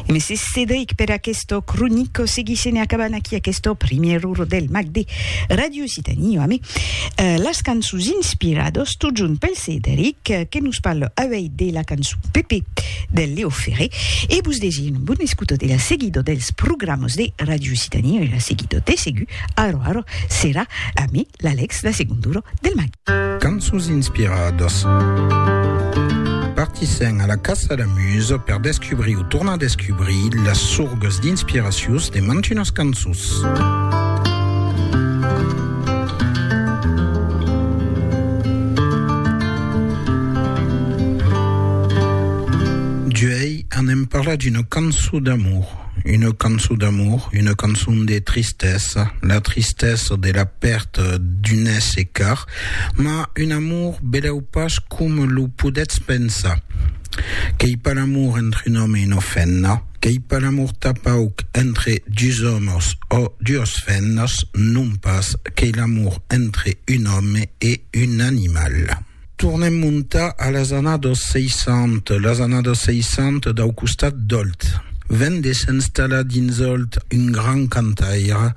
E mès Cedric per aquesta cronica. Seguissem e acabant aquí aquesta primièra ora del mag de Radio Occitanie amé las cançons inspiradas totjorn pel Cedric que nos parla avei de la cançon Pépé del Léo Ferré e vos desir una bona escota de la seguida dels programas de Radio Occitanie e la seguida de segur ara ara serà amé L'Alex de segon duro del matin. Cançons inspiradas. Partissèm a la caça la musa per descubrir o tornar descubrir las sorgas d'inspiracius de mantunas cançons. Duei anem parlar d'una cançon d'amor. Una cançon d'amor, una cançon de tristesa, la tristesa de la pèrta d'un èsser car, mas un amor belèu pas coma lo podètz pensar. Qu'ei pas l'amor entre un òme e una femna, qu'ei pas l'amor tapauc entre dus òmes ò duas femnas, non pas, qu'ei l'amor entre un òme e un animal. Tornem montar a las annados 60, las annados 60 dau costat d'Òlt. Ven de s'installar dins Òlt un grand cantaire,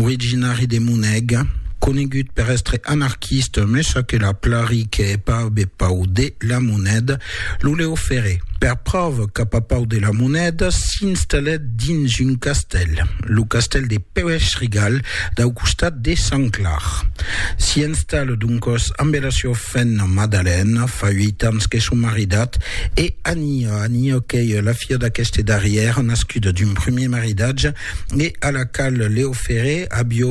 originari de Moneg, conegut per èstre anarquista, me ça que la plari que hè pas be pau de la moneda, Lo Leo Ferré, per pròva cap a Pau de la Monèda, s'installèt dins un castèl, lo castèl de Pèuèch-Rigal, dau costat de Sant Clar. S'i installa doncòs ambe la siua femna Madalèna, fa uèit ans que son maridat, e Ania, Ania qu'ei la filha d'aqueste darrièr, nascuda d'un primièr maridatge, e a la qual Leo Ferré avió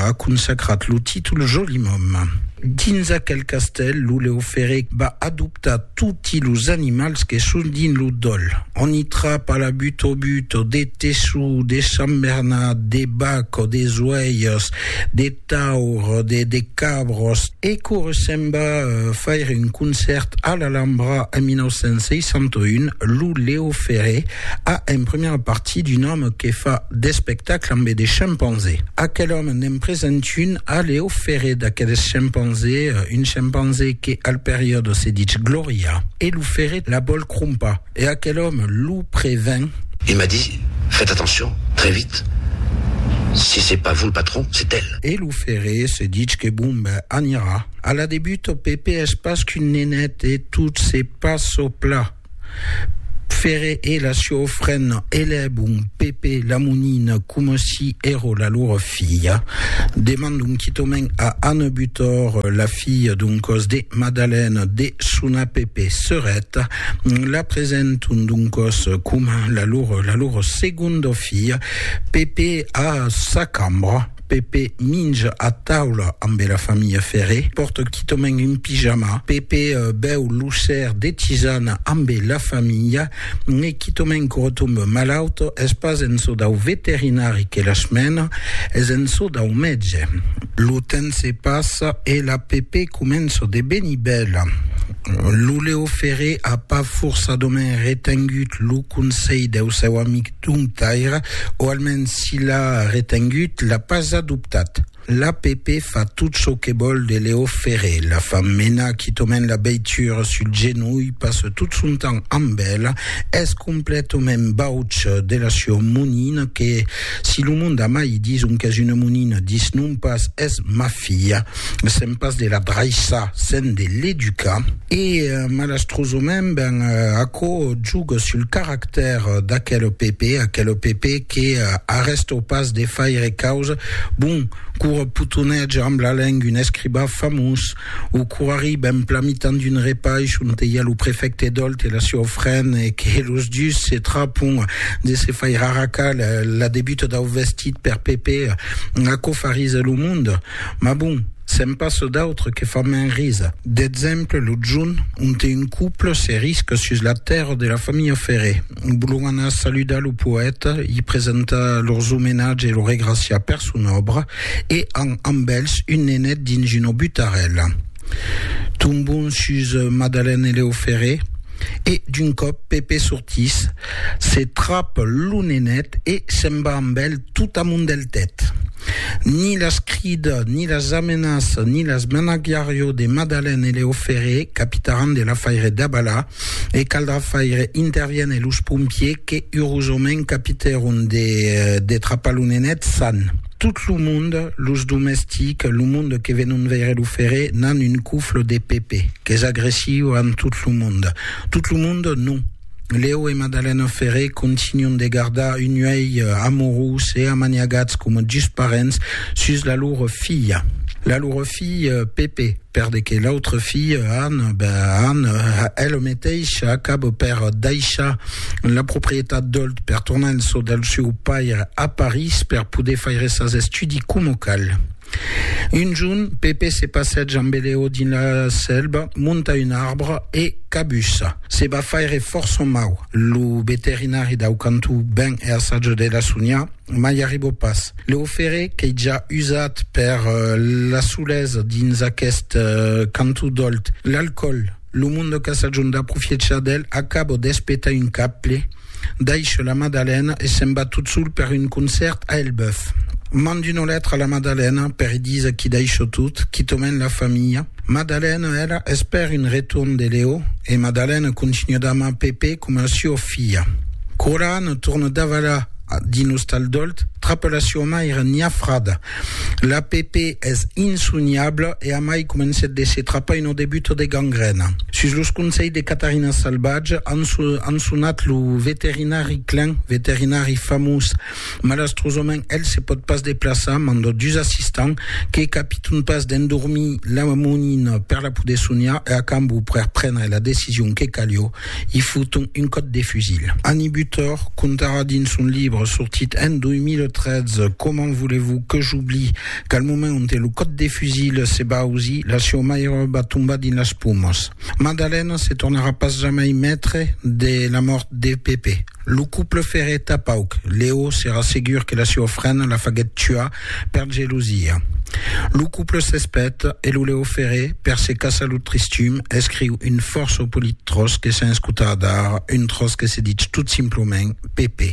aconsacrat lo títol Jolimòme. Dins aquel castèl, lo Leo Ferré va adoptar toti los animals que son dins lo dòl. On i trapa la butobuto, de teçu, de sambernat, de bac o de zoèirs, de. taur, de de cabros. E quora se'n va faire un concèrt a l'Alhambra en 1961, lo Leo Ferré a en primièra partie d'un òme que fa d'espectacle ambe de chimpanzé. Aquel òme n'en present un a Leo Ferré d'aqueles chimpanzé, un chimpanzé que al periòde se ditz Gloria e lo Ferré la vòl crompar. E aquel òme lo prevèn. Il m'a dit, Faites attention, très vite, si c'est pas vous le patron, c'est elle. E lo ferré se ditz que bon ben anirà a la de Buto, Pepè es pas qu'un nenet e tot se pas çò pla. Ferré e la sieu frena elèbon Pepè la monina coma si èro la lor filha. Demandon quitòmen a Anne Butor, la filha d'un còs de Madalène, de sonar Pepè sereta La presenton doncòs coma la lor, la lor segonda filha. Pèpe a sa cambra. Pèpe minja a taula ambe la familha Ferré. Pòrta quitament un pijama. Pèpe bèu lo ser de tisana ambe la familha. E quitament que retombe malaut. Es pas en çò dau veterinari que las mena, es en çò dau mètge. Lo temps se passa e la Pèpe comença de venir bèla. Lo Leo Ferré a pas forçadament retengut lo conselh deu seu amic Tom Taira, o almens si l'a retengut, l'a pas adoptat. L'APP fa tot çò que vòl de Leo Ferré, la fa menar quitament la veitura sul genolh, passa tot son temps amb ela, es completament bauç de la sua monina que, si lo monde a mai dison qu'es una monina, disnon pas es ma filha. Sèm pas de la draissar, sèm de l'educar. E malastrosament, ben, aquò juga sul caractèr d'aquel PP, aquel PP que arrèsta pas de faire causa, bon, qu'ora potonètge amb la lenga un escribà famós, o qu'ora arriba en plan mitan d'un repaish onte i a lo prefècte Dolt e la siua ofrena e que los dus se trapon de se faire arracar la debuta dau vestit per PP, aquò farisa lo monde. Mas bon, se'n passa d'autres que fan mens risa. D'exemple, lo junh, onte un couple se risca sus la tèrra de la familha Ferré. Volon anar saludar lo poèta, i presentar lors omenatge e lo regraciar per son òbra, e an amb elhs un nenet dins una butarèla. Tombon sus Madalène e Lèo Ferré, e d'un còp Pepè sortís, se trap lo nenet e se'n va amb elh tot amont del tèt. Ni las crida, ni las amenaça, ni las menagiarió de Madalèn e Leo Ferré, capitaràn de l'afaire d'Abala, e caldrà faire interviéner los pompiers que urosament capitèron de trapar lo nenet san. Tot lo monde, los domestics, lo monde que venon veire lo Ferré, n'an un cofle de Pepe, qu'es agressiu amb tot lo monde. Tot lo monde, non. Leo e Madalena Ferré continuan de gardar un uèlh amorós e amaniagats coma dus parents sus la lor filha. La lor filha Pepe, per de que l'autra filha Anna, ben Anna, ela meteisha acaba per daishar la proprietat d'Olt per tornar en çò del seu paire a París per poder faire sas estudis coma cal. Un jorn, Pepe se passètz amb Eleo dins la sèlva, monta un arbre e cabussa. Se va faire fòrça mau. Lo veterinari dau cantó ven e assaja de la soniar, mai arriba pas. Leo Ferré, qu'ei ja usat per la solesa dins aqueste cantó d'Òlt, l'alcòl, Lo monde qu'a sa jorn d'aprofiechar d'el acabo d'espetar un cable, daisho la Madalena e se'n va tot sol per un concèrt a Elbeuf. Mand una letra a la Madalena per i díser qu'i daisho tot, quitament la familha. Madalena, ela, espèr un retorn de Leo e Madalena continua d'amar Pepe coma a sua filha. Quora Anna torna davalar dins l'ostal d'Òlt, trapa la sua maira niafrada La PP es insoniabla e amai comencèt de se trapar una debuta de gangrèna. Sus los conselhs de Catarina Salvatge an sonat lo veterinari Klein, veterinari famós. Malastrosament el se pòt pas deplaçar, manda dus assistants que capiton pas d'endormir la monina per la poder soniar e a cambó per prendre la decision que calió, i foton un còp de fusil. Annie Butor contarà dins son libre sortit en 2013 Comment voulez-vous que j'oublie qu'al moment onte lo còp de fusil se va ausir, la sieu maire va tombar dins las pomas. Madalèna se tornarà pas jamai maitre de la mòrt de Pepe. Lo couple ferrèt a pauc. Leo s'èra segur que la seua frena la faguèt tuar per gelosia. Lo couple s'espèt e lo Leo Ferré, per se caçar lo tristum, escriu un fòrça polit tròç que sens cotar dar, un tròç que se ditz tot simplament Pepe.